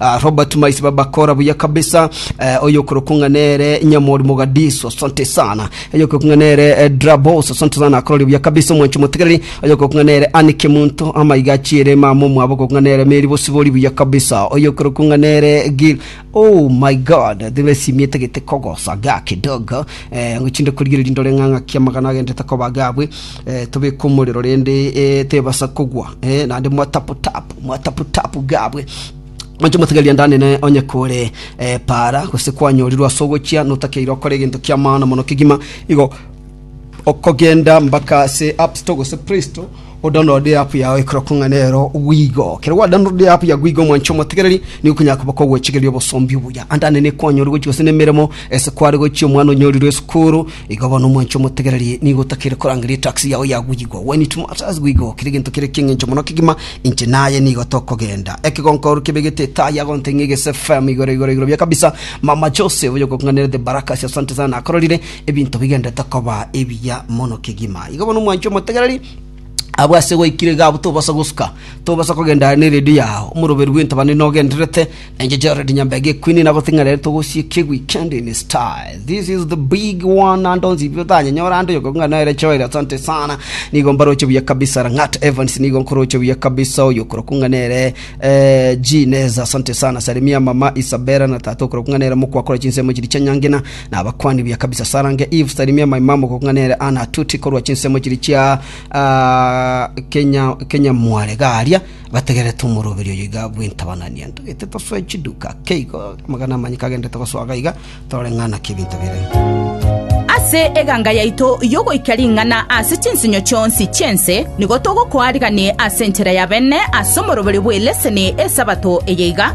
Ah, Robert Maisi babakora buya kabisa eh, oyo okorokwa ng'a nere Nyamori Mogadiso asante sana oyo okorokwa ng'a nere eh, Drabos asante sana akorori buya kabisa omwancho motegereri oyo okorokwa ng'a nere Anike Munto amaiga achiere mama omwabo okorokwa ng'a nere Meri Bosibori buya kabisa oyo okorokwa ng'a nere Gil oh my god thebe simi etagete kogosa ga kidogo eh, ngochinde korigereria ndore ng'a ng'aki amagana agendete koba gabwe Tobeke omorero rende tebasa kogwa, naende mwatapu-tapu, mwatapu-tapu gabwe. Mwanche motegerie ande anene onye kore para, gose kwanyorirwe ase ogochia, notakeire okore egento ki'amano mono kegima igo, okogenda mbaka ase App Store gose Play Store, odownload eapp yao ekorokwo ng'a nero gwigo. Kero gwa download eapp ya gwigo mwanche omotegereri, nigo okonyara koba kogochigeria obosomba obuya. Ande anene kwanyorirwe gose nemeremo, ese kware gochia omwana onyorirwe esukuru, Igo bono omwancha omotegererie nigo otakeire korangeria etax yao ya goyigwa. When it matters goyigwa kera egento kere eki'engencho mono kegima, inche naye nigo tokogenda. Ekegonkororo kebegete etaa ya gonte ng'a egese FM igoro igoro igoro bia kabisa. Mama Jose oyo okong'anerete baraka ase asante sana akororire ebinto bigenderete koba ebiya mono kegima. Igo bono omwancha omotegereri Abwo ase gwaikire iga abwo tobasa gosuka, tobasa kogenda aria neredio yao, omoroberi bw'entabana nigo ogendererete, na inche Jared Nyambega ekwini nagotebia ng'a rero togosiria ekeweekend in style. This is the big one and onzibire otanyanyora ande oyogoku ng'a nere Joel asante sana. Nigo mbaroche buya kabisa Rang'at Evans nigo nkoroche buya kabisa oyo okoroku ng'a nere eh, G Neza asante sana. Salimia mama Isabella na tata okoroku ng'a nere mokwa akora chinsemo chiria chia nyangena. na abakuani bia kabisa sarange Eve salimia maimamu gokung'a nere ana atuti korwa chinsemo chiri chia ah, kenya kenya mware garia bategerete omoroberi oyo iga bw'intabanani ento gete tosoe chiduka keigo magana amanyi kagendete gosoaga iga torore ng'ana kebinto bire ase eganga yaito yogoika ring'ana ase chinsinyo chionsi chiense nigo togokoa rigani ase enchera ya bene ase omoroberi bw'eleseni esabato eye iga